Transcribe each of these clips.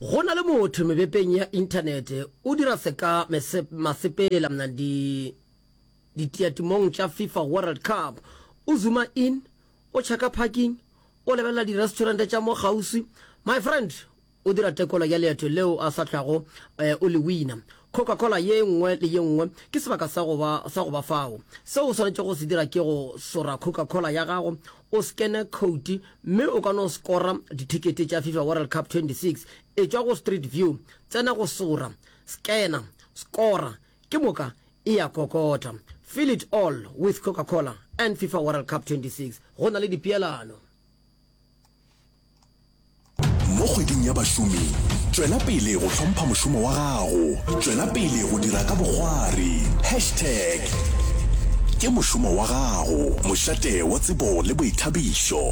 Go na le motho mebepeng ya inthanete o dira seka masepela mna di ditiatimong tša FIFA World Cup. O zuma in, o checka parking, o lebelela di-restaurant tša mo kgauswi. My friend, o dira tekolo ya leeto leo a sa tlwago eh, o le wina. Coca-Cola ye nngwe le ye nngwe ke sebaka sa go ba, sa go ba fao. Seo o swanetšego go se dira ke go sora Coca-Cola ya gago, o skene khouti, mme o ka no skora dithekete tša Fifa World Cup 26. Etšwa go Street View, tsena go sora, skena, skora, ke moka e a kokota. Fill it all with Coca-Cola and Fifa World Cup 26. Go na le dipeelano. Mo kgweding ya bašomi, tšwela pele go hlompha mošomo wa gago. Tšwela pele go dira ka bokgwari. Hashtag Ke mošomo wa gago, mošate wa tsebo le boithabišo.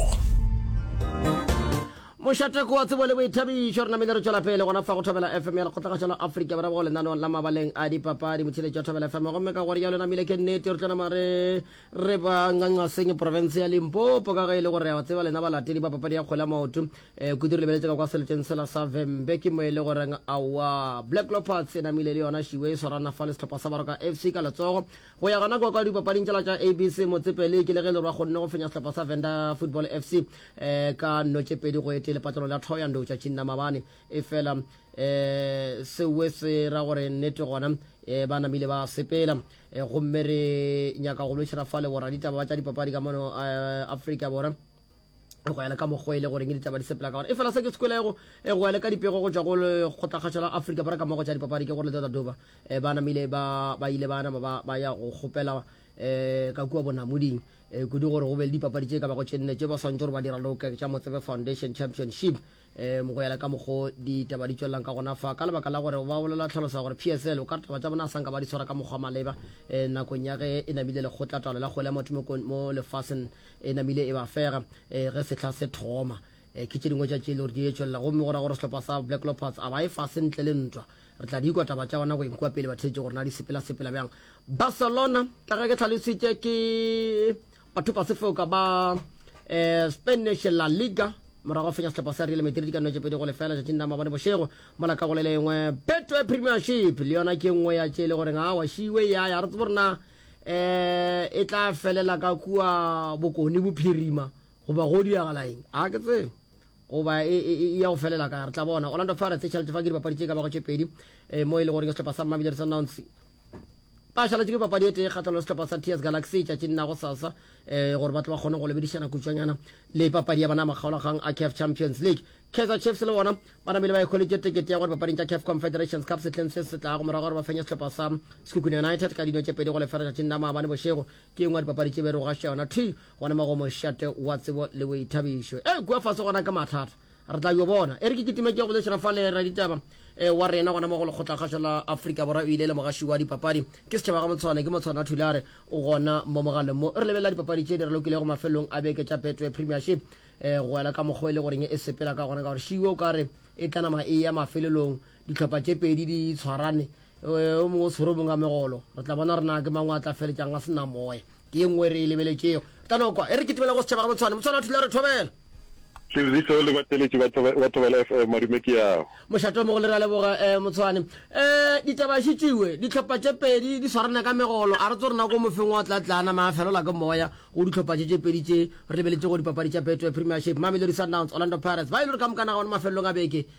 Mošate ke wa tsebo le boithabišo. Re namile re tšwela pele gona fa go Thobela FM ya Lekgotlagatšwa la Afrika Borwa go lenaneong la mabaleng a dipapadi, motšheletši wa Thobela FM. Gomme ka gore ya lo namile ke nnete, re tlo nama re Re ba Nganqaseng, profense ya Limpopo, ka ge e le gore a tseba lena balatedi ba papadi ya kgwele ya maoto, eh, kudu re lebeletse ka kwa seleteng sela sa Vhembe, ke mo e le goreng aowa, Black Leopards e namile le yona šiwe e swarana fa le sehlopha sa Baroka FC ka letsogo. Go ya gona kwa kwa dipapading tšela tša ABC Motsepele, ke le ge e le gore ba kgonne go fenya sehlopha sa Venda Football FC eh, ka nno tše pedi go e tee lepatlelong la Thohoyandou tšatšing la mabane. Efela eh, seoe se ra gore nnete gona eh, ba namile ba sepela. E, gomme re nyaka go lwešana fa le boraditaba ba tša dipapadi ka mono eh, afrika borwa go ya le ka mokgwa e le goreng ditaba di sepela ka gona e fela se ke sekwelego e go ya le ka dipego go tšwa go lekgotlakgatšha la afrika borwa ka mogo tša dipapadi ke gore le doba e, ba namile ba ile ba nama ba ya go kgopela um ka kua bonamoding um kudu gore go be le dipapadi tše ka bago tše nne tše ba swantse gore ba dira loka tša motsebe foundation championship um go yela ka mokgo ditaba di tšwelelang ka gona fa ka lebaka la gore ba bolela tlhalosa gore psl o ka re taba tša bona a sanka ba di tshwara ka mokgwa maleba um nakong ya ge e namile lekgotla taolo la kgwele ya motho mo lefaseng e namile e ba fega um ge setlha se thoma um ke tše dingwe tša tše le gore di e tšwelela gomme go ra gore sehlopha sa black lopards a ba e fase ntle le ntwa re tla di ikwa taba tša bona go enkwa pele ba theetše gore na di sepela sepela bjang barcelona ka ge ke tlhalositše ke batho ba sefoka ba eh, spanish la liga morago fenya setlhopha sa real madrid ka notse pedi go lefela tšatšing la mabone bošego mola ka go le lengwe betway premiership le yona ke nngwe ya tše e le goreng a wa šiwe ya ya re tsebo rena um eh, e tla felela ka kua bokone bophirima goba go diragala eng a ke tsebe goba e, e, e ya go felela ka re tla bona orlando pirates e tšhaletse fa ke dipapadi tše ka bago tše pedi um mo e le goreng setlhopha sa mmabidere sa nounce Pašalatši ke papadi e tee kgatlano le sehlopha sa TS Galaxy tšatšing la go sasa um gore ba tle ba kgone go lebedišana kutšwanyana le papadi ya bona ya makgaolagang a CAF Champions League. Kaizer Chiefs le bona ba namile ba ikgolitše tekete ya go dipapading tša CAF Confederations Cup sehleng se se tlago morago gore ba fenye sehlopha sa Sekhukhune United ka dino tše pedi go lefela tšatšing la maabane bošego. Ke engwe ya dipapadi tše be re go gaša yona thwi gona mo go mošate wa tsebo le boithabišo. E kua fase gona ke mathata. Re tla yo bona. E re ke kitimetše go lešira fale, raditaba e, wa rena gona mo go Lekgotlakgašo la Afrika Borwa o ile le mogaši wa dipapadi. Ke Setšhaba Gamotshwane, ke Motshwana Thulare, o gona mo mogaleng mo. Re lebelela dipapadi tše di re lokilego mafelelong a beke tša Betway Premiership. E, go ela ka mokgwa e le goreng e sepela ka gona, ka gore šiwe o ka re e tla nama e eya mafelelong, dihlopha tše pedi di tshwarane, e, o mongwe o tshwere o mongwe ka megolo. Re tla bona re na ke mang o a tla feletšang a se na moya. Ke ye nngwe e re e lebeletšego ka noko e re kitimela go setšhaba gabotshwane. Motshwana a thula a re, Thobela! Tsebiso le batheeletši ba Thobela FM, madume ke ao. Mošate o mogolo re a leboga Motshwane. Ditaba xe tšiwe, dihlopha tše pedi di swarana ka megolo, a re tso re na ko mofeng wa tla tla a nama a felola ke moya go dihlopha tše tše pedi tše. Re lebeletše go dipapadi tša Betway Premiership, Mamelodi Sundowns, Orlando Pirates, ba e le gore ka mokana gona mafelelong a beke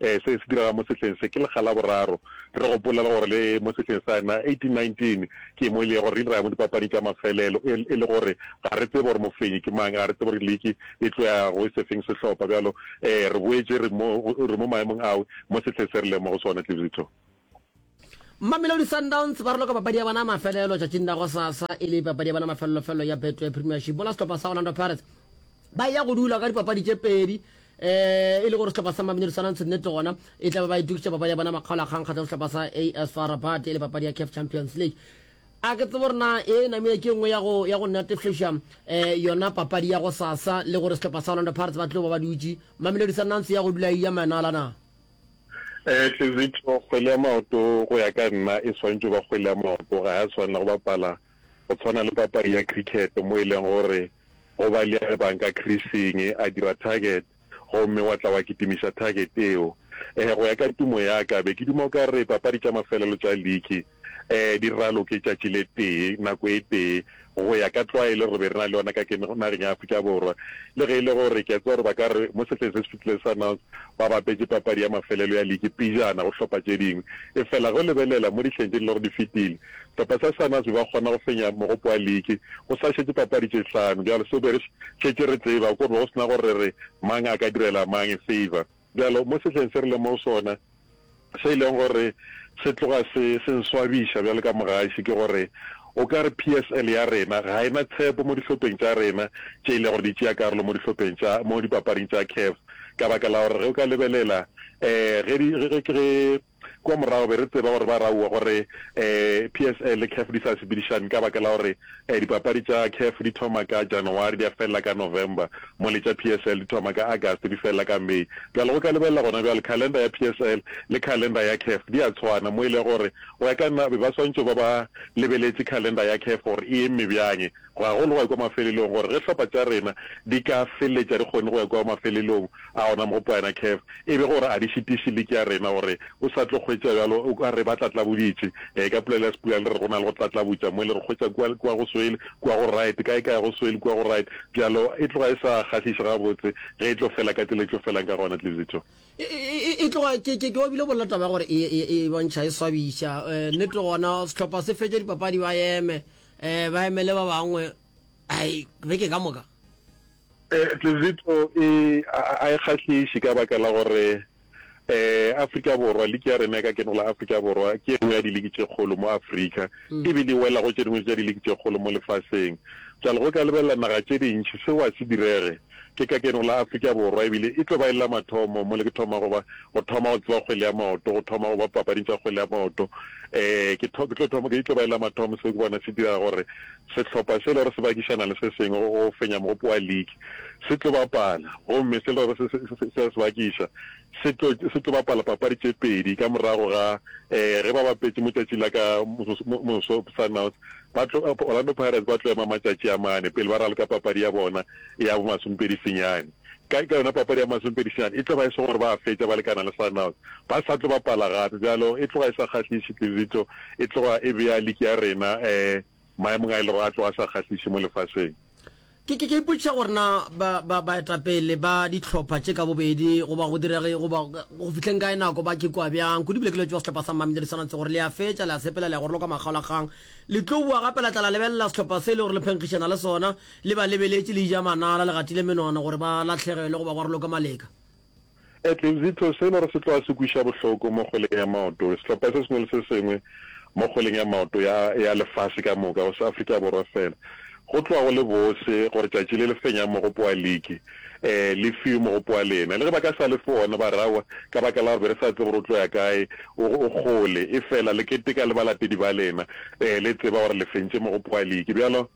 Ee, se se direga mo sehleng se. Ke lekga la boraro. Re gopola le gore le mo sehleng sa 1819 ke mo e lego gore re ile ra ya mo dipapading tša mafelelo, e, e le gore ga re tsebe gore mofenyi ke mang, ga re tsebe gore liki e tlo ya go sefeng sehlopha. Bjalo, ee, re boetše re mo, re mo maemong ao mo sehleng se re lego mo go sona, Tlibzito. Mamelodi Sundowns ba roloka papadi ya bona mafelelo tšatšing la go sasa e le papadi ya bona mafelelofelo ya Betway Premiership. Bona sehlopha sa Orlando Pirates ba ya go dula ka dipapadi tše pedi um e le gore sehlopha sa Mamelodi Sundowns nnete gona e tla be ba itukitša papadi ya bona makgaolakgang kgatlha sehlopha sa AS FAR Rabat e le papadi ya CAF Champions League a ke tsebo rena e namile ke nngwe ya go ya go natefeša um eh, yona papadi ya go sasa le gore sehlopha sa Orlando Pirates ba tlo ba ba dutše Mamelodi Sundowns ya go dula e ya manala na Eh, Tlezitho, kgwele ya maoto go ya ka nna e swantšo ba kgwele ya maoto, ga ya swanela go bapala go tshwana le papadi ya cricket mo e leng gore go ba le ya re bang ka creasing a dira target gomme wa tla wa kitimiša target eo. Eh, go ya ka tumo ya ka be ke duma o ka re papadi tša mafelelo tša league Diralo ke tšatši le tee, nako e tee. Go ya ka tlwaelo re be re na le yona ka ke nageng ya Afrika Borwa. Le ge e le gore ke a tseba gore ba ka re mo sehleng se se fetilego Sundowns ba bapetše papadi ya mafelelo ya liki pejana go hlopha tše dingwe, efela ge o lebelela mo dihleng tše di lego di fetile, sehlopha sa Sundowns be ba kgona go fenya mogopo wa liki go sa šetše papadi tše hlano. Bjale seo be re šetše re tseba ke gore be go se na gore re re mang a ka direla mang favour. Bjalo, mo sehleng se re lego mo go sona, se e lego gore se tloga se, se nswabiša bjalo ka mogaši, ke gore o ka re PSL ya rena ga e na tshepo mo dihlopheng tša rena tše e lego gore di tšea karolo mo dihlopheng tša, mo dipapading tša CAF, ka baka la gore ge o ka lebelela, ee, ge di, ge, ge, ge. Kua morago be re tseba gore ba raua gore PSL le CAF di sa sepedišane ka baka la gore dipapadi tša CAF di thoma ka Janawari di a felela ka November mo le tša PSL di thoma ka August di felela ka May. Bjale go ka lebelela gona bjale calendar ya PSL le calendar ya CAF di a tshwana mo e lego gore go ya ka nna be ba swantšo ba ba lebeletše calendar ya CAF gore e emme bjang. go ya go ya kwa mafelelong gore ge hlopha tša rena di ka feletša di kgonne go ya kwa mafelelong a ona mo go Poyana Caf e be gore a di šitiše liki ya rena gore o sa tlo hwetša bjalo o ka re ba tlatlaboditše ee ka polelo ya Sepula le re go na le go tlatlabotša mo le re hwetša kua kua go swele kua go right kae kae go swele kua go right bjalo e tloga e sa kgahliše gabotse ge e tlo fela ka tsela e tlo felang ka gona Tlizito e tloga ke ke obile bolela taba ya gore e bontšha e swabiša nete gona sehlopha se fetše dipapadi ba eme um ba emele ba bangwe ai beke ka moka eh, tlezito e a e kgahliše ka baka la gore eh Afrika Borwa liki ya rena ka keno la Afrika Borwa ke nngwe ya diliki tše kgolo mo Afrika mm. e be di wela go tše dingwe tša diliki tše kgolo mo lefaseng jalo go ka lebelela naga tše dintši seo a se direge Ke ka keno la Afrika Borwa e bile e tlo ba e le la mathomo mo le ke thoma go ba go thoma go tseba kgwele ya maoto, go thoma go ba papading tša kgwele ya maoto. Ee, ke tlo ke thoma ke tlo ba e le la mathomo seo ke bona se dira gore sehlopha se le gore se bakišana le se sengwe go go fenya mogopo wa league se tlo bapala gomme se le gore se se se se bakiša se tlo se tlo bapala papadi tše pedi ka morago ga ee ge ba bapetše mo tšatši la ka moso moso Sundowns Ba tlo, Orlando Pirates ba tlo ema matšatši a mane pele ba raloka papadi ya bona ya bomasomepedi senyane. Ka, ka yona papadi ya bomasomepedi senyane e tlo ba e se gore ba a fetša ba lekana le Sundowns. Ba sa tlo bapala gape, bjalo e tloga e sa kgahliše Tlizico, e tloga e bea liki ya rena um maemong a e le gore a tloga a sa kgahliše mo lefaseng. Ke, ke, ke ipotšiša gore na ba, ba, baetapele ba dihlopha tše ka bobedi, goba go direge, goba go fihleng kae nako, ba ke kua bjang. Kudu bile ke letšwa sehlopha sa Mamelodi Sundowns gore le a fetša, le a sepela, le a goroloka makgaolakgang. Le tlo boa gape la tla la lebelela sehlopha se e le gore le phenkgišana le sona, le ba lebeletše le ija manala, le gatile menono gore ba lahlegelwe goba go raloke maleka. Etlezito, se e le gore se tloga se kweša bohloko mo kgweleng ya maoto, sehlopha se sengwe le se sengwe mo kgweleng ya maoto ya ya lefase ka moka, go se Afrika Borwa fela. Go tloga go le bose gore tšatši le le fenyang mogopo wa liki e le fiwe mogopo wa lena. Le ge ba ka sa le fe wona, ba re, Aowa, ka baka la gore be re sa tsebe gore o tlo ya kae, o, o kgole. Efela le keteka le balatedi ba lena, e le tseba gore le fentše mogopo wa liki. Bjalo.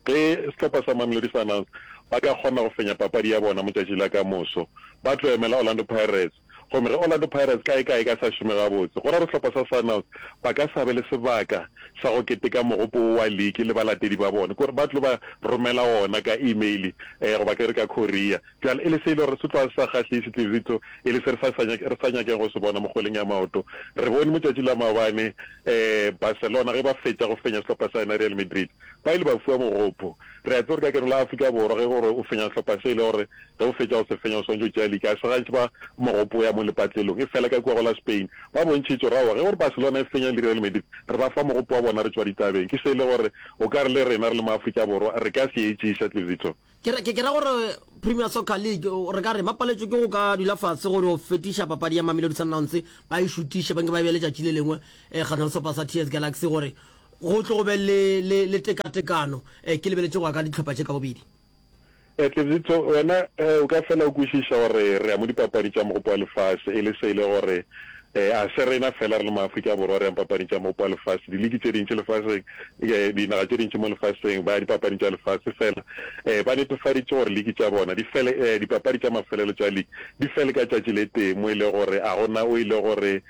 Ge sehlopha sa Mamelodi Sundowns ba ka kgona go fenya papadi ya bona motšatši la ka moso, ba tlo emela Orlando Pirates. Gomme ge Orlando Pirates ka e ka e ka sa šome gabotse, go ra gore sehlopha sa Sundowns ba ka sa be le sebaka sa go keteka mogopo wo wa liki le balatedi ba bona. Ke gore ba tlo ba romela wona ka email goba ke re ka courier. Bjale, e le se e le gore se tloga se sa kgahliše, Tlirito, e le se re sa, re sa nyakeng go se bona mo kgweleng ya maoto. Re bone motšatši la maobane, ee, Barcelona ge ba fetša go fenya sehlopha sa yona Real Madrid, ba ile ba fiwa mogopo. Re a tseba gore ka keno la Afrika Borwa, ge gore o fenya sehlopha se e le gore ge o fetša go se fenya o swanetše o tšea liki, ga se gantši ba mogopo o ya mo lepatlelong. Efela ka kua go la Spain ba bontšhitše gore aowa, ge gore Barcelona e fenya le Real Madrid, re ba fa mogopo wa bona re tšwa ditabeng. Ke se e le gore o ka re le rena re le ma-Afrika Borwa re ka se etšiša, Tlirito. Ke ra gore Premier Soccer League re ka re ba paletšwe ke go ka dula fatshe gore o fetiša papadi ya Mamelodi Sundowns ba e šutiše ba nke ba be letšatši le lengwe eh, kgatlhang sepa sa TS Galaxy gore go tlo go be le tekatekano eh, ke lebeletše go ya ka ditlhopha tše ka bobedi. E Tlebzitso, wena eh, o ka fela o kwešiša gore re ya mo dipapadi tša Mogopo wa Lefase e le se e le gore Ee, a se rena fela re le maAfrika Borwa re yang papading tša mopa wa lefase. Diliki tše dintši lefaseng, dinaga tše dintši mo lefaseng, ba ya dipapading tša lefase fela ba netefaditše gore liki tša bona di fele, dipapadi tša mafelelo tša liki di fele ka tšatši le tee mo e lego gore a go na o e lego gore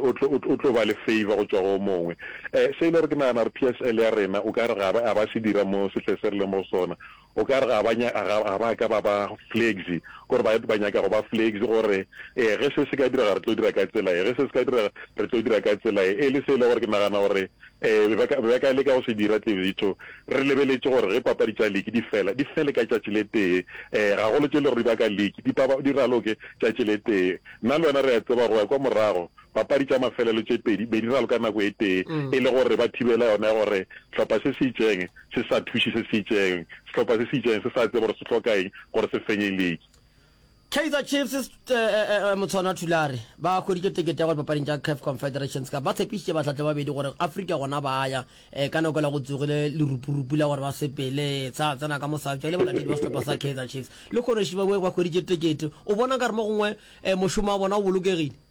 o tlo ba le favour go tšwa go o mongwe. Se e lego gore ke nagana gore PSL ya rena o ka re ga ba se dira mo sehleng se re leng mo go sona. O ka re ga ba, ga ba ka ba ba flexy, gore ba, ba nyaka go ba flexy, gore, Ee, ge se se ka direga re tlo dira ka tsela ye, ge se se ka direga re tlo dira ka tsela ye. E le se e le gore ke nagana gore, ee, be ba ka, be ba ka leka go se dira, Tlevitho. Re lebeletše gore ge papadi tša liki di fela, di fele ka tšatši le tee, ee, gagolo tše le gore di ba ka liki, di, di raloke tšatši le tee. Nna le wena re a tseba, go ya kwa morago, Papadi tša mafelelo tše pedi be di ralwe ka nako e tee e le gore ba thibele yona ya gore sehlopha se se itšeng se sa thuše se se itšeng, sehlopha se se itšeng se sa tsebe gore se hloka eng gore se fenye liki. Kaizer Chiefs Motshwana Thulare ba hweditše tekete ya go ya dipapading tša Caf Confederations Cup. Ba tshepišitše bahlahli ba babedi gore Afrika gona ba ya eh, ka nako e la go tsogile lerupurupu la gore ba sepele sa tsena ka mosabja le balatedi ba sehlopha sa Kaizer Chiefs le kgonoši ba ba hweditše tekete. O bona ka re mo gongwe eh, mošomo wa bona o bolokegile?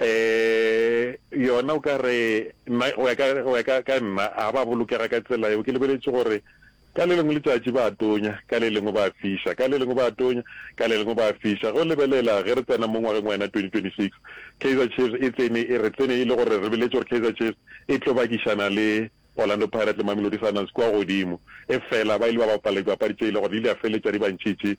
um yona o ka re nna go ya ka go ya ka ka nna a ba bolokega ka tsela yeo ke lebeletse gore ka le lengwe letsatsi ba tonya ka le lengwe ba fisa ka le lengwe ba tonya ka le lengwe ba fisa go lebelela ge re tsena mo ngwageng wa yena 2026 Kaizer Chiefs e tsene e re tsene e le gore re beletse gore Kaizer Chiefs e tlo bakišana le Orlando Pirates le Mamelodi Sundowns kua godimo, efela ba ile ba bapala dipapadi tše e le gore di ile tša feletša di ba ntšhitše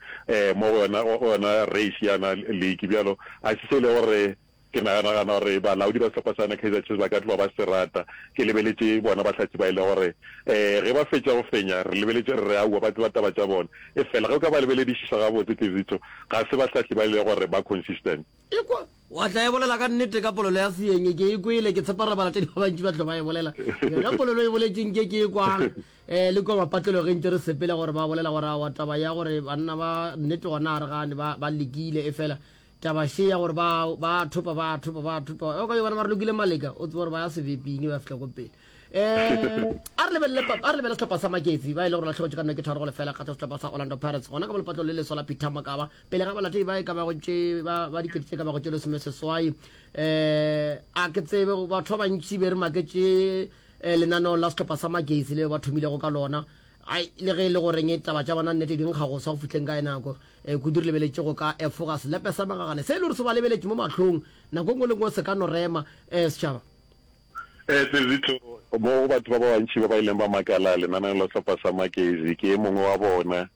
mo go yona go yona race ya yona league. Bjalo ga se se e le gore ke naganagana gore balaodi ba sehlopha sa yona Kaizer Chiefs ba ka tloga ba se rata. Ke lebeletše bona bahlatse ba e le gore ge ba fetša go fenya re lebeletše re re aowa ba tseba taba tša bona, efela ge o ka ba lebeledišiša gabotse Tlizicho ga se bahlahli ba e le gore ba consistent. Ekwa Wa tla e bolela ka nnete ka polelo ya Seeng, ke e kwele, ke tshepa re bala tše di ba bantši ba tlo ba e bolela. Yona polelo e boletše nke ke e kwang eh, le kua mapatlelo ge ntše re sepela gore ba bolela gore awa taba ya gore banna ba nnete gona ga re gane ba, ba lekile efela taba še ya gore ba, ba thopa, ba thopa, ba thopa yo ka yo bona ba re lokile maleka, o tseba gore ba ya sebeping ba fihla ko pele. Eh, a re lebelele, a re lebelele sehlopha sa Maketsi ba e le gore lahlogetše ka nnete tharo go lefela kgatlha sehlopha sa Orlando Pirates gona ka mo lepatlelo le leswa la Peter Mokaba. pele ga balatedi ba e ka bago tše ba ba dikete tše ka bago tše lesome seswai um a ke tsebe batho ba bantši be re maketše um lenaneo la setlhopha sa magesi le ba thomilego ka lona ai le ge e le goreng e taba tša bona nnete di nkga go sa go fitlheng ka e nako um kudu re lebeletše go ka efoga selepe sa magagane se e le gore se ba lebeletše mo mahlong nako ngwe le ngwe se ka no rema um setšhaba Sezitho, mo go batho ba ba bantši ba ba ileng ba makala lenaneo la sehlopha sa Magezi, ke e mongwe wa bona.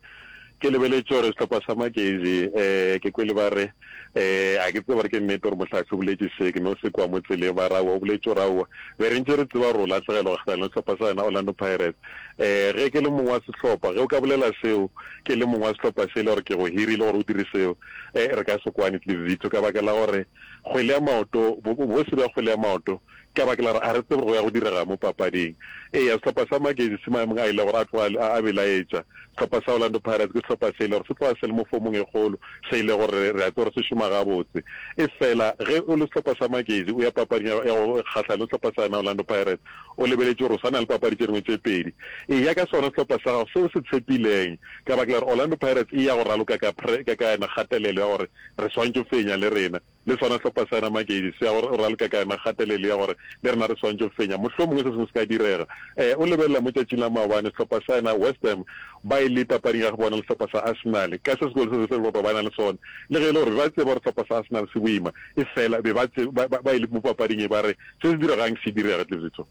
Ke lebeletše gore sehlopha sa Magezi ke kwele ba re, A ke tsebe gore ke nnete gore Mohlahli o boletše se, ke no se kwa mo tseleng. Ba re, Aowa, o boletše gore aowa. Be re ntše re tseba gore o lahlegelwa kgahlano le sehlopha sa yona Orlando Pirates. Ge ke le mong wa sehlopha, ge o ka bolela seo ke le mong wa sehlopha se e le gore ke go hirile gore o dire seo, re ka se kwane Sezitho ka baka la gore, kgwele ya maoto, bo, bo se bja kgwele ya maoto, ka baka la gore a re tsebe gore go ya go direga mo papading. Eya, sehlopha sa Magesi se maemong a ile gore a tloga a, a belaetša. Sehlopha sa Orlando Pirates ke sehlopha se ile gore se tloga se le mo fomong e kgolo, se ile gore re, re a tseba gore se šoma gabotse. Efela ge o le sehlopha sa Magesi, o ya papading ya, ya go kgahlana le sehlopha sa yona Orlando Pirates, o lebeletše gore o swana le papadi tše dingwe tše pedi. Eya ka sona sehlopha sa gago se o se tshepileng, ka baka la gore Orlando Pirates e ya go raloka ka pre, ka, ka yona kgatelelo ya gore Re swanetše go fenya le rena. Le sona sehlopha sa yena Magezi se a go ralka ka yona kgatelelo ya gore le rena re swanetše go fenya. Mohlomongwe se sengwe se ka direga. Ee, o lebelela mo tšatšing la maobane sehlopha sa yena West Ham ba e le papading ya go bona le sehlopha sa Arsenal ka se sekolo se sesehla ba ba na le sona. Le ge e le gore be ba tseba gore sehlopha sa Arsenal se boima, efela be ba, ba, ba e le mo papading e ba re se se diregang se direge. Tlibzico.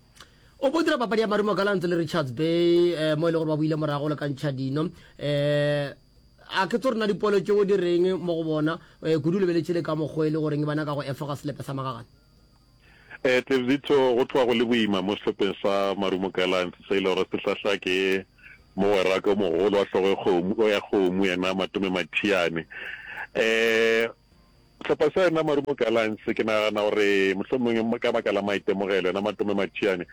O ko dira papadi ya marumo Gallants le Richards Bay eh, mo e le gore ba buile morago le ka ntšha dino eh, a ke tso rena dipolo tšeo di reng mo go bona eh, kudu lebeletše le ka mokgwa e le goreng bana ka go efoga selepe sa magagane eh, tebzitho go tloga go le boima mo sehlopeng sa marumo galants se e le gore se hlahla ke mogweraka o mogolo wa hlogo e ya kgomo yena matome mathiane eh, Sehlopha sa yena Marumo Gallants ke nagana gore mohlomongwe ka baka la maitemogelo, yena Matome Mathiane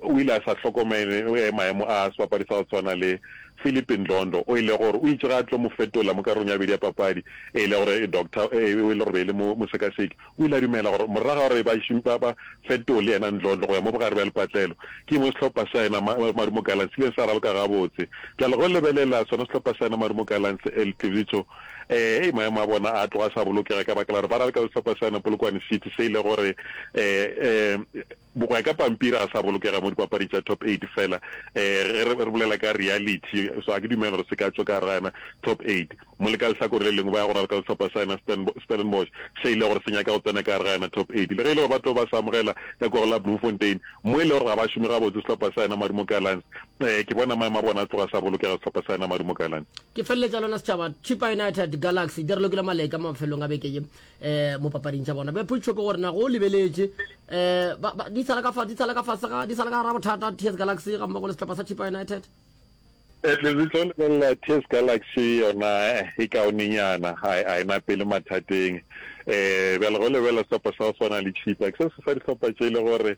o ile a sa hlokomele maemo a sebapadi sa go tshwana le Phillip Ndhlondo o e lego gore o itše ge a tlo mo fetola mo karolong ya bobedi ya papadi e le gore doctor e le gore be e le mosekaseki o ile a dumela gore morago ga gore ba šimpa ba fetole yena Ndhlondo go ya mo bogare bja lepatlelo ke mo sehlopha sa yena Marumo Gallants se ile sa raloka gabotse bjale go lebelela sona sehlopha sa yena Marumo Gallants El Tlivicho Ee, maemo a bona a tloga a sa bolokega ka baka la gore ba raleka le sehlopha sa yona Polokwane City se e le gore go ya ka pampiri ga sa bolokega mo dipapadi tša Top Eight fela ge re bolela ka reality. So ga ke dumele gore se ka tšwa ka gare ga yona Top Eight. Mo le ka lehlakore le lengwe ba ya go raleka le sehlopha sa yona Stellenbosch se e le gore se nyaka go tsena ka gare ga yona Top Eight le ge e le gore ba tlo ba se amogela ka kua go la Bloemfontein mo e le gore ga ba šome gabotse sehlopha sa yona Madumo Gallants. Ee, ke bona maemo a bona a tloga sa bolokega sehlopha sa Enamadu Mokalane. Ke feleletša lona setšhaba Chippa United Galaxy di relokile maleka mafelong a beke ye um mo papading tša bona. Be potšo ke gore na go lebeletše um di sala ka fa di sala ka fase ga di sala ka gara bothata TS Galaxy ga mmogo le sehlopha sa Chippa United? At least tlo lebelela TS Galaxy yona e kaonenyana ga e e na pele mathateng um bjale go lebelela sehlopha sa go swana le Chippa ke se se fa dihlopha tše e le gore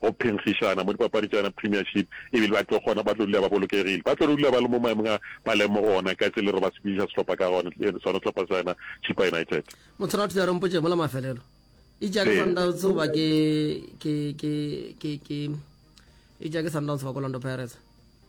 go phenkgišana mo dipapadi tša yona Premiership ebile ba tlo kgona, ba tlo dula ba bolokegile. Ba tlo dula ba le mo maemong a ba leng mo go ona ka tsela e le gore ba sepediša sehlopha ka gona, sona sehlopha sa yona Chippa United. Motho ra thula re mpotše mola mafelelo. Itša ke Sundowns goba ke, ke, ke, ke, ke, itša ke Sundowns goba ke Orlando Pirates?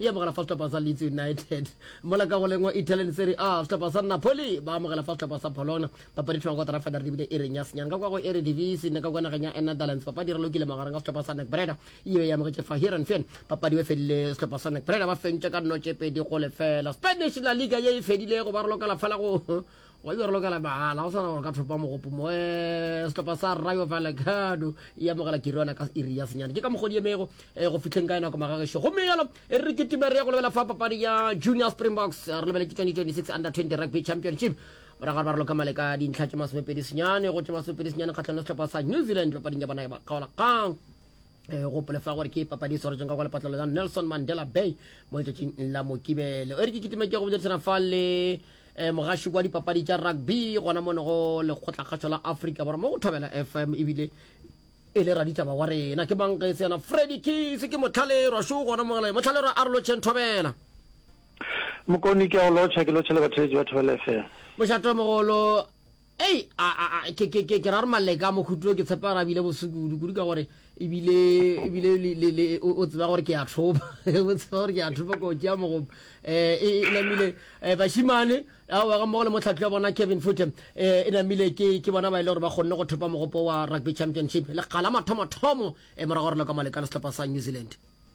e amogela fa sehlopha sa Leeds United. Mola ka go lengwa Italian Serie A, sehlopha sa Napoli ba amogela fa sehlopha sa Bologna. Papadi thoma kotara fela re bile e reng ya senyang ka kwa go Eredivisie ne ka kwa nageng ya Enetherlands. Papadi re lokile magareng ga sehlopha sa Nac Breda yeo e amogetše fa Heerenveen. Papadi e fedile sehlopha sa Nac Breda ba fentše ka nnotše pedi go lefela. Spanish La Liga ye e fedilego ba re lokela fela go wa be re lokela mahala go tshwana gore ka thopa mogopo moe setlhopha sa rayo valekano e amogela kiriona ka iri ya senyane ke ka mogodi emego eh, go fitlheng ka enako magagešo gomme yalo e re ketima re ya go lebelela fa papadi ya junior springboks re lebele ke 2026 under 20 rugby championship morago re ba re loka male ka dintlha tše masomepedi senyane go tše masomepedi senyane kgatlhano setlhopha sa new zealand papading ya bona ya bakaolakgang Eh, gopole fa gore ke papadi e swaretseng ka kwa lepatlelo la nelson mandela bay mo letšatšing la mokibelo e re ke kitime ke go bodirisana fa le um mogaši kwa dipapadi tša rugby gona mone go lekgotlakgašo la africa borwa mo go thobela fm ebile e le raditaba wa rena ke banka e se yana freddy keys ke motlhalerwa šo gona mogele motlhalerwa a re lotšheng thobela mokoni ke a go lotšha ke lotšhele batheletši ba thobela fm mošato mogolo Ei, a, a, a, ke, ke, ke, ke ra re maleka mo khutlo ke tshepa ra bile bosu kudu kudu ka gore ebile ebile le, le, le, o, o tseba gore ke a thopa o tseba gore ke a thopa ko tšea mogomo eh, e, e namile eh, bashimane ao ga mmogo le motlhatli wa bona kevin fute eh, e namile ke, ke bona ba e le gore ba kgonne go thopa mogopo wa rugby championship lekgala mathomothomo eh, morago gore le ka maleka le setlhopha sa new zealand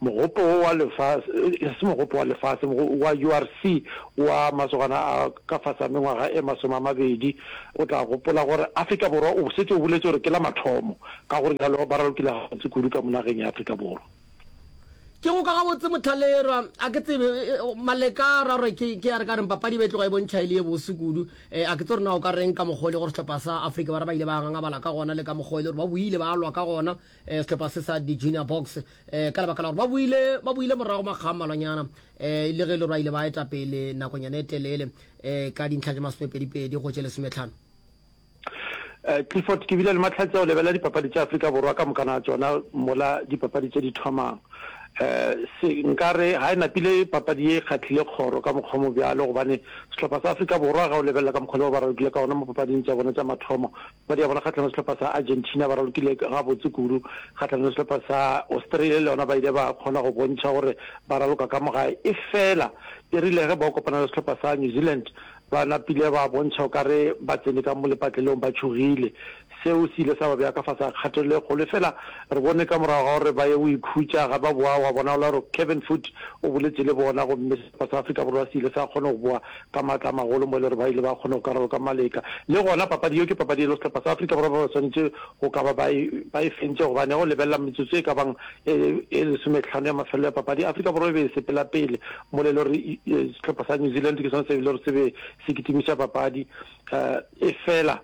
Mogopo wo wa lefase, e se mogopo wa lefase, wa URC wa masogana a ka fase a mengwaga e masome a mabedi, o tla gopola gore Afrika Borwa o setse o boletše gore ke la mathomo, ka gore bjalo ba ralokile gabotse kudu ka mo nageng ya Afrika Borwa. Ke go ka gabotse Motlhalerwa, a ke tsebe Maleka ra gore ke ke a re ka reng papadi ba e tloga e bontšha e le ye bose kudu, eh, a ke tse gore na o ka reng ka mokgwa o le gore sehlopha sa Afrika Borwa ba ile ba ngangabala ka gona le ka mokgwa o le gore ba boile ba lwa ka gona, um sehlopha se sa di-junior box um ka lebaka la gore ba boile morago makga mmalwanyana um le ge e le gore ba ile ba eta pele nakonyana e telele um ka dintlha tša masomepedipedi go tše lesometlhano Eh, clifford ke bile le matlhatsi a go lebelela dipapadi tša aforika borwa ka mokana tsona mola dipapadi tše di thomang um nkare ga e napile papadi ye e kgatlhile kgoro ka mokgwa mo bjalo gobane sehlopha sa aforika borwa ga o lebelela ka mokgwa le ba ba ragile ka ona mo papading tša bona tša mathomo Padi ya bona kgahlanong le sehlopha sa Argentina ba ralokile gabotse kudu. Kgahlanong le sehlopha sa Australia le yona ba ile ba kgona go bontšha gore ba raloka ka mo gae efela e rile ge bao kopana le sehlopha sa New Zealand ba napile ba bontšha o ka re ba tsene ka mo lepatlelong ba tšhogile. Seo se ile sa ba bea ka fase ga kgatelelo e kgolo efela re bone ka morago ga gore ba ye go ikhutša ga ba boa gwa bonagola gore Kevin Foot o boletše le bona gomme sehlopha sa Afrika Borwa se ile sa kgona go boa ka maatla a magolo mo e le gore ba ile ba kgona go karolo ka maleka. Le gona papadi yeo ke papadi e lo sehlopha sa Afrika Borwa ba ba swanetše go ka ba ba e, ba e fentše gobane go lebelela metsotso e ka bang e, e lesometlhano ya mafelelo ya papadi, Afrika Borwa e be e sepela pele mo le e le gore sehlopha sa New Zealand ke sone se e le gore se be se kitimiša papadi uh, efela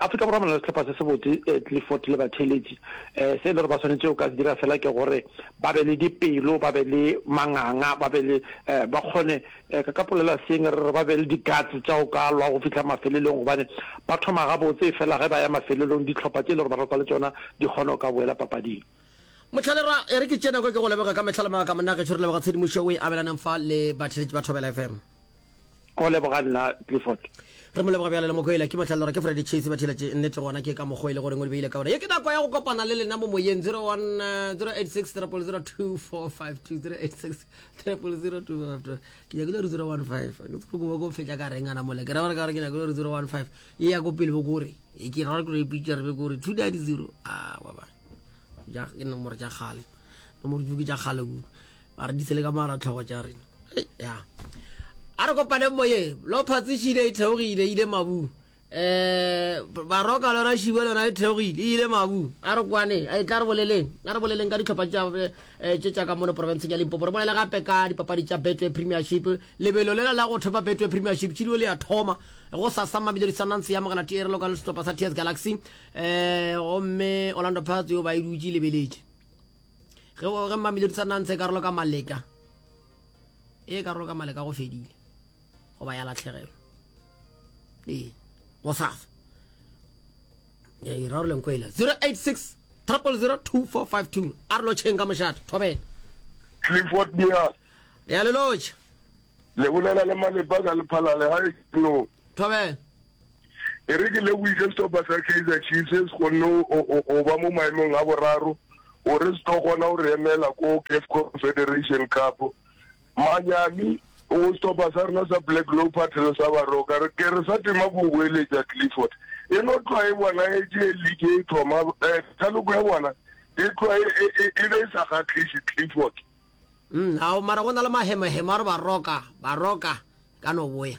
Afrika Borwa ba na le sehlopha se sebotse, Clifford le batheeletši. Se e le gore ba swanetše go ka se dira fela ke gore ba be le dipelo, ba be le manganga, ba be le, ba kgone, ka ka polela seeng, re re ba be le di-guts tša go ka lwa go fihla mafelelong, gobane ba thoma gabotse efela ge ba ya mafelelong dihlopha tše e le gore ba rwakwa le tšona di kgona go ka boela papading. Motlhalerwa, e re ke tšee nako e ke go leboge ka mehla le maaka monna gešo, re leboga tshedimošo o e abelaneng fa le batheeletši ba Thobela FM. Go leboga nna Clifford. Re mo leboga bjalo le mokwele. Ke mohlalo gore ke Freddy Chase ba thila tše nnete gona ke ka mokgo e le gore ngwe di beile ka gore ye ke nako ya go kopana le lena mo moyeng 01 086 000 2452 086 000 2452 ke nyakile gore 015 ke tsoko go go fetša ka reng ana mole ke ra gore ka gore ke nyakile gore 015 e ya go pele bo gore e ke ra gore ke re pitša re be gore 290 ah wa ba ja ke nomoro ja gale nomoro ke ja gale a re ditsele ka mara tlhogo tša rena ya a re kopaneng moye lo phatsešile e theogile e ile mabu um baroka lona šibe lona e theogile e ile mabu a re kwane a e tla re boleleng a re boleleng ka ditlhopha tše eh, tša ka mono porofenseng ya limpopo re bolele gape ka dipapadi tša betway premiership lebelo lela la go thopa betway premiership tšilio le ya thoma go sasa mamelodi sundance ya mogela tierelo ka setlhopha sa ts galaxy um gomme orlando pats yo ba e dutse lebeletše ge o ge mamelodi sa nantse karolo ka maleka e karolo ka maleka go fedile goba ya latlhegelo ee go safa ya iraroleng ko ela 086 0002452 a re lotšheng ka mošate thobela clifford bea re ya le lotšha le bolela le malepa ka lephalale ga e no thobela E re ke lebogiše sehlopha sa Kaizer Chiefs se se kgonne go ba mo maemong a boraro gore se tlo kgona go re emela ko CAF Confederation Cup. Manyami go sehlopha sa rena sa Black Leopards le sa Baroka re ke re sa tema go boeletša Clifford e no tlwa e bona e tše league e thoma eh, taloko ya bona e tlwa e, e, e, e be e sa kgatlhiše Clifford mm, ao mara go na le mahemahema a re baroka baroka ka no boya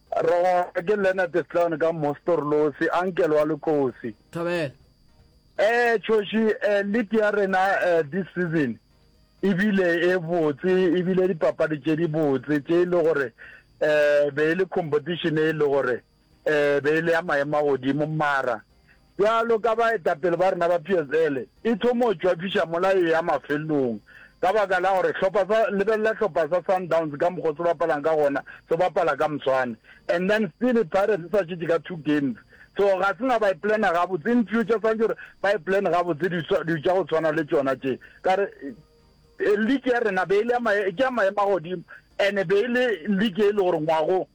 Roga ke Leonard Sloan ka Mostorlosi, ankele wa Lekosi. Thobela. Eh Choshi, eh league ya rena eh this season ebile e botse ebile dipapadi tše di botse tše e le gore eh be e le competition e le gore eh be e le ya maemo a godimo mara Bjalo ka baetapele ba rena ba PSL, e thomo tšwafiša mola e eya mafelelong ka baka la gore hlopha sa, lebelela hlopha sa Sundowns ka mokgo se bapalang ka gona, se bapala ka moswane. And then still Pirates e sa šetše ka two games. So ga se na ba e plana gabotse, in future swantše gore ba e plane gabotse dilo tša go tshwana le tšona tše. Ka re league ya rena be e le ya maemo a godimo and be e le league e le gore ngwagong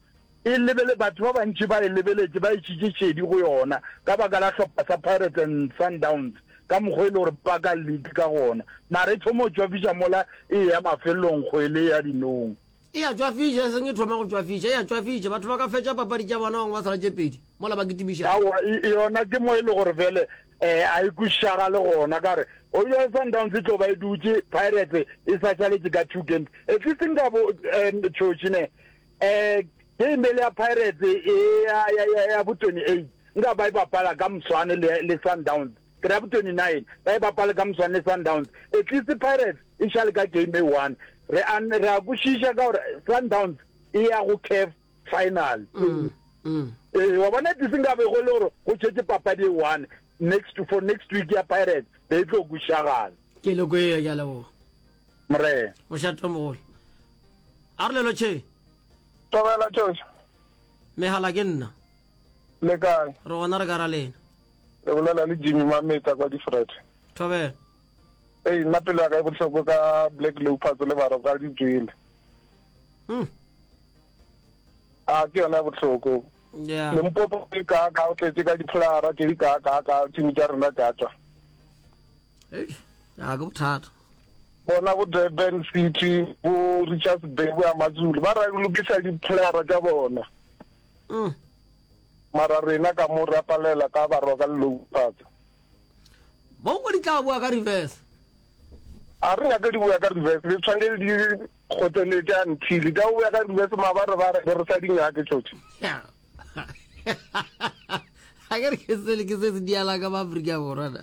e lebele, batho ba bantši ba e lebeletše, ba išitše šedi go yona ka baka la hlopha sa Pirates and Sundowns ka mokgwa e le gore ba ka league ka gona, mara e thoma go tšwafiša mola e eya mafelelong kgwele ya dinong. E a tšwafiša, e seng e thoma go tšwafiša, e a tšwafiša, batho ba ka fetša papadi tša bona bangwe ba sala tše pedi mola ba kitimišana. Aowa, yona ke mo e le gore bjale a e kwešišagale gona, ka gore eupša Sundowns e tlo ba e dutše, Pirates e sa šaletše ka two games, at least nkabo tšhoši ne. Um ge imele ya Pirates e ya ya ya ya bo 28 nka ba e bapala ka moswane le le Sundowns ke ra bo 29 ba e bapala ka moswane le Sundowns at least Pirates e shale ka game e one re a re a kwešiša ka gore Sundowns e ya go CAF final ee wa bona tse nka be go le gore go tšetse papadi e one next for next week ya Pirates be e tlo kwešišagala ke loko e ya leboga Morena. Mošatomogolo. A re lelo tše. Tobela tšoša. Mehala ke nna. Le kae? Re gona re ka ra lena. Le bolela le Jimmy Mametsa kwa Difred. Tobela. Ei, nna pelo ya ka e bohloko ka Black Leopards le baro ka di tswile. Hmm. A ke yona ya bohloko. Yeah. Le mpopo ke ka ka o tletse ka dipholara ke di ka ka ka tšimi tša rena tša tswa. a ke bothata bona bo durban city bo richards bay bo ya matsulu ba ra lokisa dipholara tša bona mm. mara rena ka mo ra palela ka barwa ka lelopatsa bo go di tla boa ka reverse a re nyake di boya ka reverse le tshwanele di kgotseletse until di a boya ka reverse ma ba re ba re re sa di nyake tšotšo a ke re ke sele ke se se diala ka maaforika borwana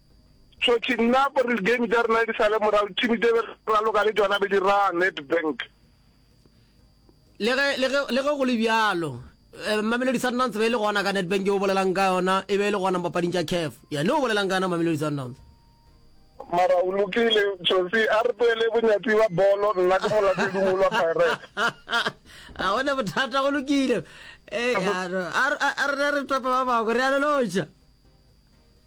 Tšhotši, Nna gore di-game tša rena di sale morago, team tše be re raloka le tšona be di raya Nedbank. Le ge, le ge, le ge go le bjalo, eh, Mamelodi Sundowns be e le gona ka Nedbank yo o bolelang ka yona, e be e le gona mopapading tša CAF. Yane o bolelang ka yona Mamelodi Sundowns. Mara o lokile, Tšhotši, a re tloele bonyatsi ba bolo, nna ke molatelimolo wa Pirates. Ga gona bothata, go lokile. Eh, ya no, a re, a re, a re topa ba bangwe, re a lelotša.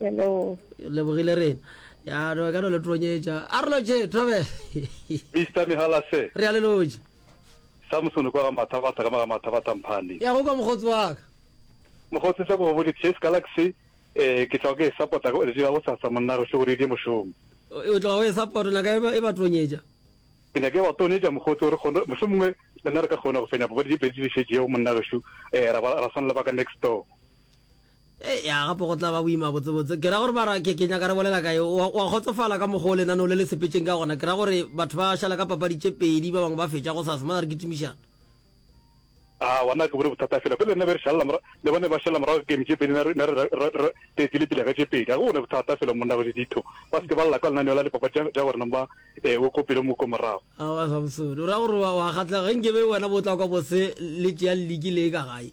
Hello. Lebogile rena. Ya no ka no le tronyetša. A re loje Thobela. Mr Mihalase. Re a le loje. Samson kwa ga mathabatha ka maga mathabatha mphane. Ya go kwa mogotsi wa ka. Mogotsi sa go bodi Chase Galaxy eh ke tla go ke support go le dira go tsatsa monna re hle go di mošomo. O tla go e support na ka e ba tronyetša. Ke ne ke ba tronyetša mogotsi re kgone mohlomongwe le nna re ka kgona go fenya bobedi di bedi di šetšego monna re shu eh ra ra swana le ba ka next door. Eya, gape go tla ba boima botsebotse. Ke ra gore bara, ke, ke nyaka re bolela ka yo. O, o a kgotsofala ka mokgwa o lenaneo le le sepetšeng ka gona. Ke ra gore batho ba šala ka papadi tše pedi, ba bangwe ba fetša go sasa. Mara re kitimišana. A, wa na, ke bone bothata fela. Pele ne be re šalela morago, le bone ba šalela morago game tše pedi, ne re, ne re, re, re, re tletile pele ka tše pedi. A ke bone bothata fela, monna Kgoši Ditho. Ba se ke ba lla kwa lenaneo la dipapadi tša, tša gore neng ba, ee, o ko pele mo ko morago. Aowa Samsoni, o ra gore o a, o a kgahlega. Ge nke be wena bo tla kwa bose le tšea liki le e ka gae.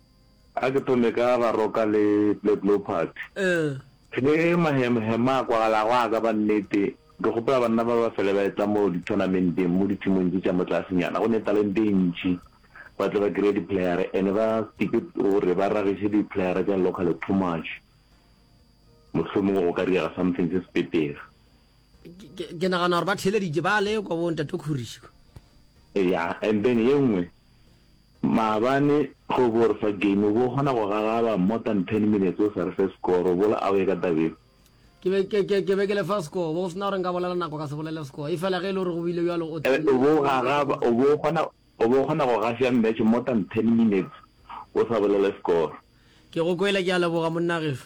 A ke thome ka Baroka le Black Leopards. Ge mahemhema a kwagalago a ka ba nnete, ke kgopela banna ba ba fele ba etla mo dithonamendeng mo ditšhemong tše tša mo tlasenyana go ne talente e ntši ba tle ba kry-e diplayere and ba stike gore ba ragiše diplayere tša local too much. Mohlomongwe go ka direga something se se petega. Ke nagana gore ba theeleditše ba le kwa bo Ntate Khurishi kwa. Eya and then ye nngwe Maabane go bo re fa game, o bo o kgona go gagaba more than ten minutes o sa re fe score, o bo le away ka taba eo. Ke be, ke, ke, ke be ke le fa score, o bo go sena gore nka bolela nako ka se bolele score, e fela ge e le gore go bile bjalo o tla. O bo o gagaba, o bo o kgona, o bo o kgona go gafša match more than ten minutes o sa bolele score. Ke go kwele, ke a leboga monna gešo.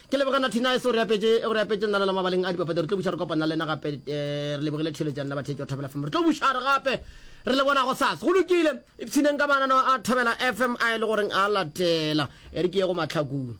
Ke leboga Natty Nice o re apetše o re apetše nalala mabaleng a dipapadi re tlo buša re kopana le yena gape eh, re lebogile theletšane la bathetši wa Thobela FM re tlo buša re gape re le bona go sasa go lokile ipshineng ka mananeo a Thobela FM a e le goreng a latela e re ke ye go matlhakong